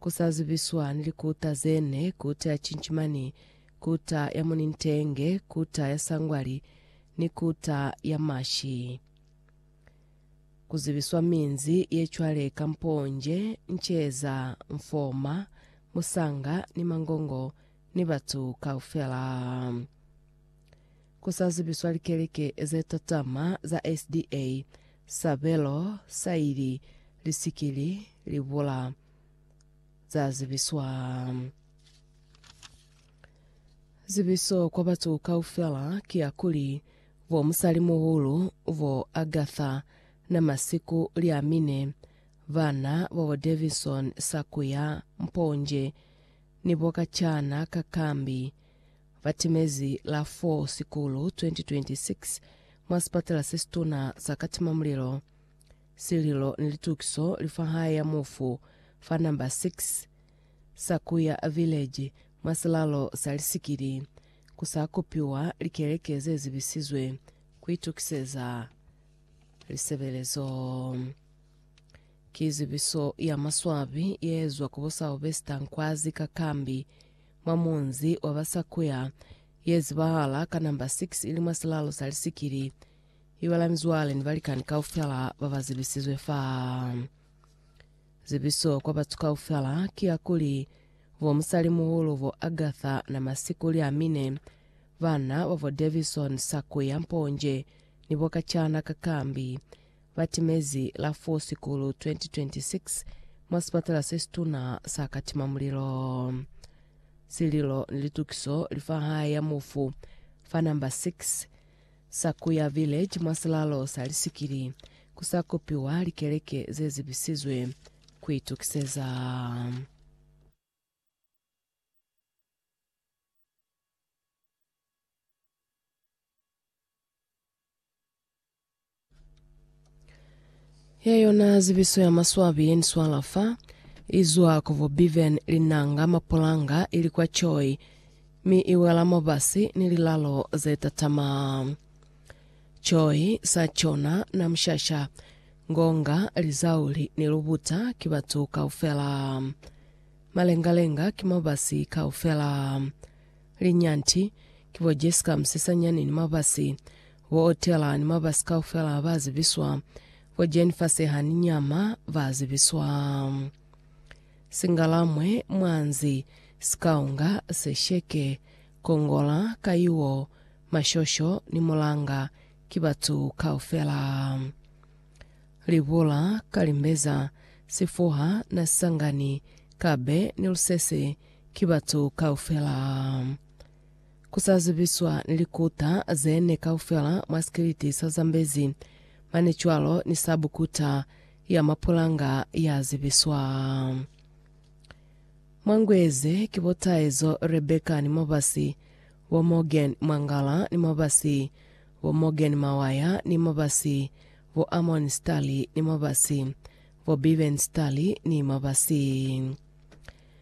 kusazibiswa ni likuta zene, kuta ya cinchimani, kuta ya munintenge, kuta ya sangwali, ni kuta ya mashi. Kuzibiswa minzi ye cwale ka mponje, nceza, mfoma, musanga, ni mangongo, ni batu kaufela. Kusazibiswa likeleke ze tatama za SDA Sabelo sa ili li si ke li li bula za zibiswa. Zibiso kwa batu kaufela ki ya kuli, bo musalimuhulu bo Agatha na masiku li a mine, bana bobo Davison Sakuya Mponje ni bo kacana ka Kambi Batimezi la 4 Sikulu 2026 mwa sipatala sesituna sa Katimamulilo, sililo ni litukiso li fa hae ya mufu fa number 6 Sakuya Village mwa silalo sa Lisikili, ku sa kopiwa likeleke ze zibisizwe ku itukiseza lisebelezo. Ki zibiso ya maswabi ye ezwa ku bo Sylvester Nkwazi Kakambi mwa munzi wa ba Sakuya, ye zibahala ka namba 6 ili mwa silalo sa lisikili, ibalani cwale ni balikani kaufela ba ba zibisizwe fa. Zibiso kwa batu kaufela ki ya kuli, bo musalimuhulu bo Agatha na masiku li a mine, bana babo Davison, Sakuya, Mponje, ni bo kacana ka Kambi. ba timezi la 4 Sikulu 2026 mwa sipatala se situna sa Katimamulilo. Sililo ni litukiso li fa hae ya mufu fa namba 6 Sakuya Village mwa silalo sa Lisikili ku sa kopiwa likeleke ze zibisizwe ku itukiseza. Ya yona zibiso ya maswabi yeniswala fa izwa ku bo Biven, Linanga, Mapulanga ili kwa Choi mi iwela mobasi ni lilalo zetatama. Choi, Sachona, Namshasha, Ngonga, Lizauli ni Lubuta ki batu kaufela. Malengalenga ki mobasi kaufela. Linyanti ki bo Jessica Musesanyani ni mobasi Bo Otela ni mabasi kaufela ba zibiswa. Bo Jane Faseha ni Nyama ba zibiswa. Singalamwe, Mwanzi, Sikaunga, Sesheke, Kongola, Kayuo, Mashosho ni Mulanga ki batu kaufela. Libula, Kalimbeza, Sifuha, Nasisangani, Kabe ni Lusese ki batu kaufela. ku sa zibiswa ni likuta ze ne kaufela mwa sikiliti sa Zambezi, mane cwalo ni sabu kuta ya mapulanga ya zibiswa. Mwa ngu ye ze ki bo Taezo Rebecca ni mabasi, bo Morgan Mwangala ni mabasi, bo Morgan Mawaya ni mabasi, bo Amon Stali ni mabasi, bo Biven Stali ni mabasi.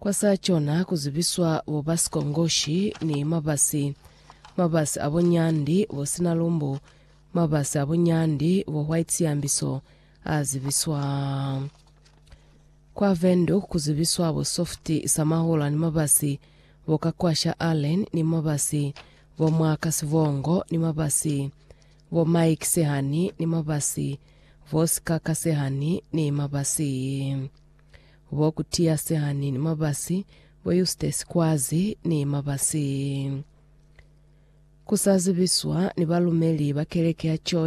Kwa sa cona ku zibiswa bo ba sikongoshi ni mabasi, mabasi a bunyandi bo sina lumbu, mabasi a bunyandi bo white siambiso a zibiswa. Kwa Windhoek ku zibiswa bo soft sa mahula ni mabasi bo ka kwa sha Allen ni mabasi bo Mwaka Sibongo ni mabasi bo Mike Sehani ni mabasi bo Sikaka Sehani ni mabasi. Bo Kutiya Sehani ni Mabasi, bo Eustace Kwazi ni Mabasi. Ku sa zibiswa ni balumeli ba keleke ya Choi